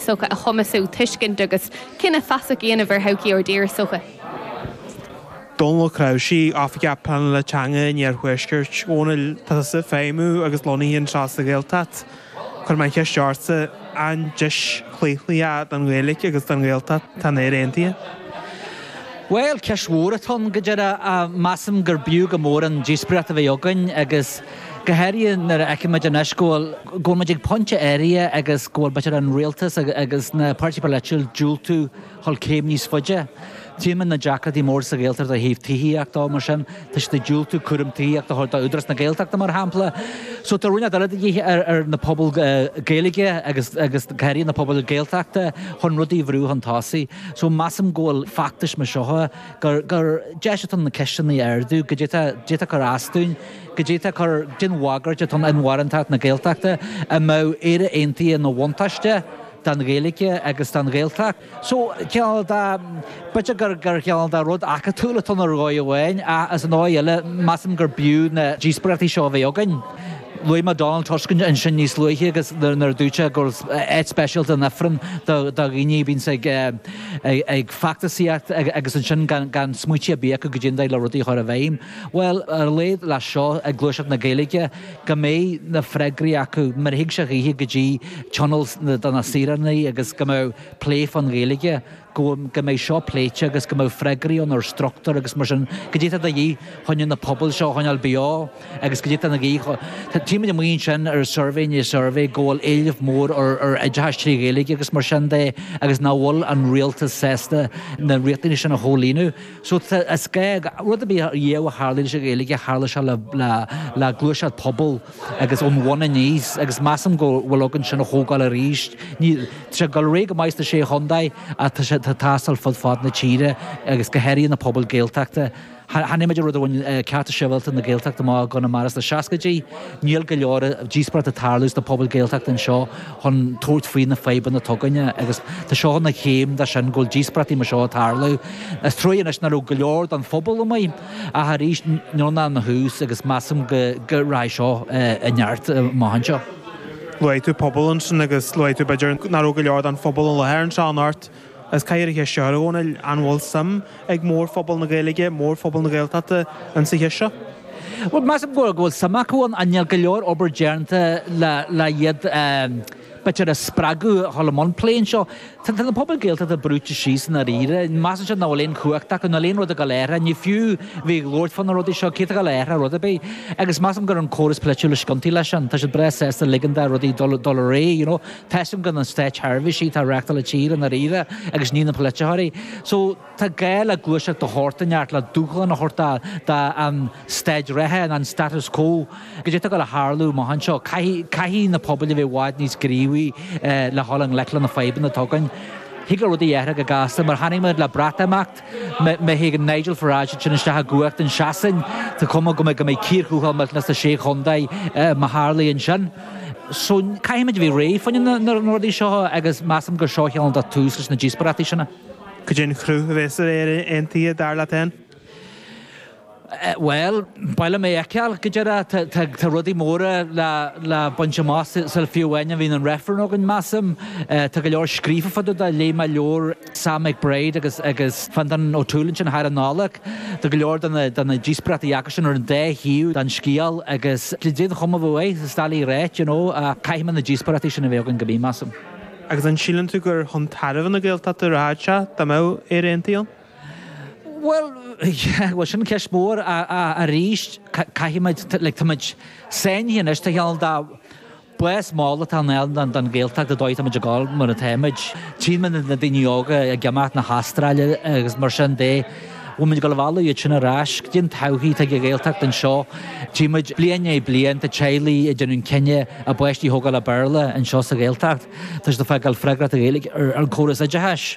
sochaí a chumasú tuiscint agus cinneadh feasach a dhéanamh ar thodhchaí ár dtíre sochaí. Dónall Ó Cnáimhsí, Oifigeach Pleanála Teanga in Iarthuaisceart Dhún na nGall Tá tusa ag feidhmiú agus lonnaithe anseo sa Ghaeltacht. Cuirfidh mé an cheist ortsa, an deis chlaochlaithe don Ghaeilge agus don Ghaeltacht atá in Éirinn Aontaithe? Bhuel, ceist mhór atá ann, go dearfa. Measaim gur b'fhiú go mór an díospóireacht a bheith againn agus. go háirithe nuair a fheicimid anois go bhfuil muid ag pointe áirithe agus go bhfuil b'fhéidir an Rialtas agus na páirtithe polaitiúla ag diúltú a dhul céim níos faide. Tímid na deacrachtaí móra sa Ghaeltacht ó thaobh tithíochta de, mar sin tá siad ag diúltú cúram tithíochta a thabhairt do Údarás na Gaeltachta mar shampla. So tá roinnt eile de dhíth ar na pobail Gaeilge agus go háirithe na pobail Gaeltachta chun rudaí a bhrú chun tosaigh. So measaim go bhfuil feachtais mar seo gur deis atá ann na ceisteanna a ardú go d'fhéadfadh cur as dúinn. go d'fhéadfadh cur den bhagairt atá ann inmharthanacht na Gaeltachta an mbeadh Éire Aontaithe ina bhuntáiste don Ghaeilge agus don Ghaeltacht. So, cineál de, b'fhéidir gur gur cineál de rud acadúil atá ann ar dhóigh amháin ach as an dóigh eile measaim gur b'fhiú na díospóireachtaí seo a bheith againn. Luaigh mé Donald Tusk ansin níos luaithe agus nuair a dúirt sé go bhfuil áit speisialta in Ifreann do do dhaoine a bhíonns ag ag feachtasaíocht agus ansin gan gan smaoitiú ar bith acu goidé an dóigh le rudaí a chur i bhfeidhm. Bhuel, ar a laghad le seo ag gluaiseacht na Gaeilge go mbeidh na freagraí acu nuair a thig sé dhaoithe go dtí tionól do na saoránaigh agus go mbeadh plé fán Ghaeilge, go mbeidh seo pléite agus go mbeadh freagraí ann ar struchtúr agus mar sin, goidé atá de dhíth chun na pobail seo a choinneáil beo agus goidé atá de dhíth chun, tímid amuigh ansin ar suirbhé i ndiaidh suirbhé go bhfuil éileamh mór ar oideachas trí Ghaeilge agus mar sin de agus nach bhfuil an Rialtas sásta na riachtanaisí sin a chomhlíonadh. So rud ar bith riamh a tharla leis an Ghaeilge, tharla sé le gluaiseacht pobail agus ón bhun aníos agus measaim go bhfuil againn sin a thógáil arís. Tá sé ag dul ar aghaidh go maith sna Sé Chontae ach tá sé ag teastáil fud fad na tíre agus go háirithe na pobail Gaeltachta. Chonaic muid rud amháin, Cearta Sibhialta na Gaeltachta amuigh i gConamara sna seascaidí. Níl go leor díospóireacht ag tarlú sna pobail Gaeltachta anseo. chun tabhairt faoi na fadhbanna atá againne agus tá seo ina chéim de sin go bhfuil díospóireachtaí mar seo ag tarlú. Is truagh anois ná raibh go leor den phobal amuigh ach arís níl ann ach tús agus measaim go rachaidh seo i neart amach anseo. Luaigh tú pobal ansin agus luaigh tú b'fhéidir ná raibh go leor den phobal i láthair anseo anocht. Is ciorruithe é seo, a Dhónaill. An bhfuil suim ag mórphobal na Gaeilge, mórphobal na Gaeltachta ins an ábhar seo? Bhuel, measaim go bhfuil suim acu ann. Níl go leor obair déanta le iad b'fhéidir a spreagadh a dhul i mbun plé anseo. Tá na pobail Gaeltachta brúite síos i ndáiríre. Measann siad ná fuil aon chumhacht acu, níl aon rud ag dul a athrú. Ní fiú bheith ag labhairt fá na rudaí seo, cé atá ag dul a athrú rud ar bith. Agus measaim gurb é an córas polaitiúil is ciontaí le sin. Tá siad breá sásta ligean do rudaí dul dul ar aghaidh, you know. Measaim gur na státseirbhísigh atá ag reáchtáil na tíre i ndáiríre agus ní na polaiteoirí. So tá gá le gluaiseacht de shórt inteacht le dúshlán a thabhairt don staid reatha nó an status quo. Cad é atá ag gabháil a tharlú amach anseo. Caithfidh na pobail a bheith i bhfad níos gníomhaí le dhul i ngleic le na fadhbanna atá againn. Thig le rudaí a athrú go gasta mar a chonaic muid le Breatimeacht. Má thig an Nigel Farage sin isteach i gcumhacht i Sasain. Tá cuma air go mbeidh cíor thuathail maidir leis na sé chontae má tharlaíonn sin. So caithfimid a bheith réidh fá choinne na rudaí seo agus measaim gur seo a cheann do tús leis na díospóireachtaí sin. Cad é an chruth a bheas ar Éirinn aontaithe dar leat fhéin? Bhuel, ba mhaith liom é a fheiceáil go díreach. Tá rudaí móra le baint amach sul fiú amháin a bhíonn an reifreann againn, measaim. Tá go leor scríofa fá dtaobh de, léigh mé leabhar Sam McBride agus Fintan O'Toole ansin thar an Nollaig. Tá go leor de na díospóireachtaí acu sin ar an dá thaobh den scéal agus cad é an chuma uaidh, is dá laí réidh, you know, ach caithfidh muid na díospóireachtaí sin a bheith againn go mí, measaim. Agus an síleann tú gur chun tairbhe na Gaeltachta a rachaidh sé dá mbeadh Éire aontaithe ann? Bhuel, bhuel sin ceist mhór arís. Caithfimid, like, táimid sáinnithe anois, tá an dá bás mall atá ann don Ghaeltacht ar dhóigh, táimid ag gabháil mar atá muid. Tchímid na daoine óga ag imeacht na hAstráile agus mar sin de. Bhfuilmid ag dul a mhealladh iad sin ar ais cad é an todhchaí atá ag an Ghaeltacht anseo. Tchímid bliain i ndiaidh bliain tá teaghlaigh ag déanamh an cinneadh a bpáistí a thógáil le Béarla anseo sa Ghaeltacht toisc atá ag fágáil freagracht na Gaeilge ar an chóras oideachais.